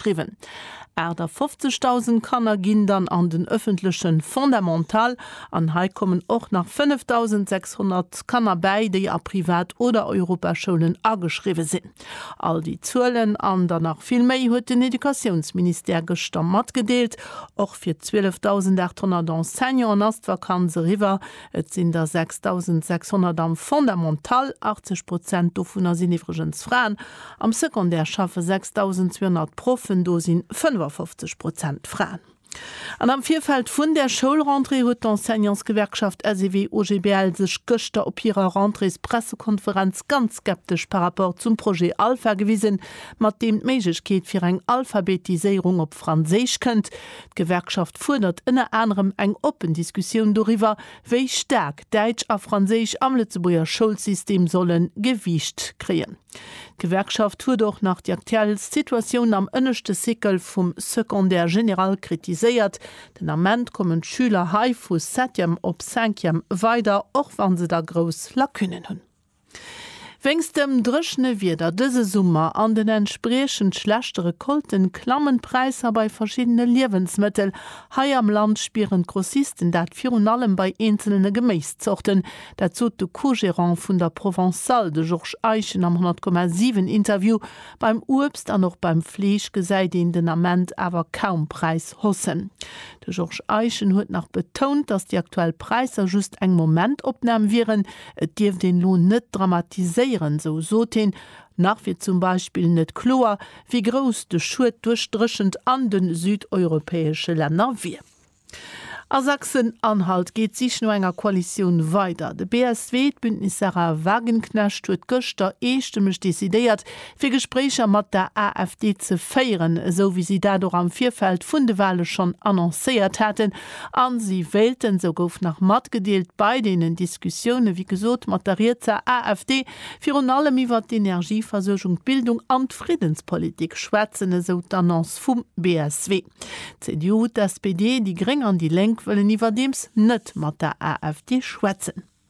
driwwen. 58.000 Kanner ginn dann an den ëffentleche Fondamental an hei kommen och nach 5.600 Kanner bäi, déi a Privat oder Europaschoulen ageschriwwe sinn. All déi Zuelen an der nach vill méi huet den Educatiounsministère gëschter matgedeelt. Och fir 12.800 Enseignanten ass d'Vakanz eriwwer. Et sinn der 6.600 am Fondamental, 80 Prozent dovunner sinn iwwregens Fraen. Am Secondaire schaffe 6.200 Proffen, do si 55 Prozent Fraen. An am Virfeld vun der Schoulrentrée huet d'Enseignantsgewerkschaft SEW-OGBL sech gëschter op hirer Rentréespressekonferenz ganz skeptesch par rapport zum Projet Alpha gewisen, mat deem d'Méiglechkeet fir eng Alphabetiséierung op Franséisch kënnt, D'Gewerkschaft fuerdert ënner anerem eng oppen Diskussioun doriwwer, wéi staark Däitsch a Franséisch am Lëtzebuerger Schoulsystem solle Gewiicht kréien. D'Gewerkschaft huet och nach déi aktuell Situatioun am ënneschte Cycle vum Secondaire général kritiséiert. Den Ament kommen d'Schüler hei vu Septième op Cinquième weider, och wa se da grouss Lacunnen hunn. Wéinst dem dréchene Wieder dëse Summer an den entspriechend schlechte Recolten klammen d'Präisser bei verschiddene Liewensmëttel. Hei am Land spieren d'Grossisten dat virun allem bei eenzelne Geméiszorten. Dat sot de Co-Gerant vun der Provençale, de Georges Eischen am 100,7 Interview. Beim Uebst an och beim Fleesch gesäit een den Ament awer kaum Präisshaussen. De Georges Eischen huet nach betount, datt déi aktuell Präisser just eng Momentopnam wieren. Et dierft een elo net dramatiséieren, sou sot hien. Nach wier zum Beispill net kloer, wéi grouss de Schued duerch d'Dréchent an de südeuropäesche Länner wier. A Sachsen-Anhalt geet d'Sich no enger Koalitioun weider. De BSW, d'Bündnis Sahra Wagenknecht, huet gëschter eestëmmeg decidéiert, fir Gespréicher mat der AfD ze féieren, esou wéi si dat och am Virfeld vun de Wahle schonn annoncéiert haten, a si wéilten, esou gouf nach matgedeelt, bei deenen Diskussioune wéi gesot mat der rietser AfD virun allem iwwert d'Energieversuergung, d'Bildung an d'Friddenspolitik schwätzen, esou d'Annonce vum BSW. D'CDU, d'SPD, déi Gréng an déi Lénk wëllen iwwerdeems net mat der AfD schwätzen.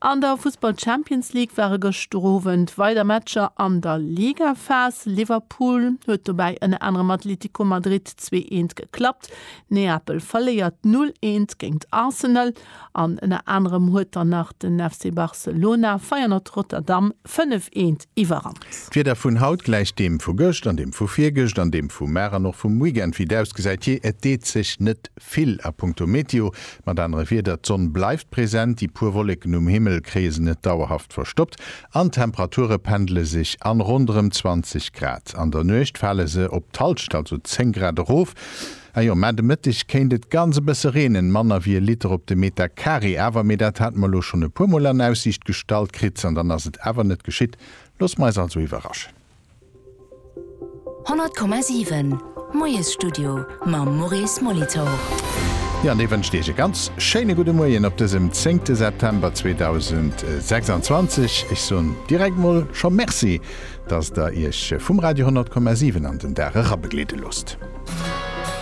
An der Fussball Champions League ware gëschter Owend weider Matcher an der Ligaphas. Liverpool huet dobäi ënner anerem Atlético Madrid zwee eent geklappt. Neapel verléiert null eent géingt Arsenal an ënner anerem huet dann nach den FC Barcelona Feyenoord Rotterdam fënnef eent Iwwerrand. D'Wieder vun haut gläicht deem vu gëscht an deem vu virgëscht an deem vu mar an och vum Weekend. Wéi et ausgesäit, jee, et deet sech net vill a punkto Meteo. Mat anere Wierder, d'Sonn bleift present, déi puer Wolleken um Himmel kréie se net dauerhaft verstoppt an d'Temperature pendele sech an ronderëm 20 Grad. An der Nuecht fale se op d'Halscht, also 10 Grad erof. Ajo, mä de Mëtteg kéint et ganz e bësse reenen, manner wéi e Liter op de Meter Carré awer, mee dat hate mer elo schonn e puer Mol an Aussiicht gestallt kritt, an dann ass et awer net geschitt. Loosse mer eis also iwwerraschen. 100,7 Moiesstudio mam Maurice Molitor. Jo, an dee wënscht Iech e ganz schéine gudde Moien op dësem zéngte September 2026. Ech soen direkt emol scho Merci, dass Der Iech vum Radio 100,7 an den Dag erabegleede loosst.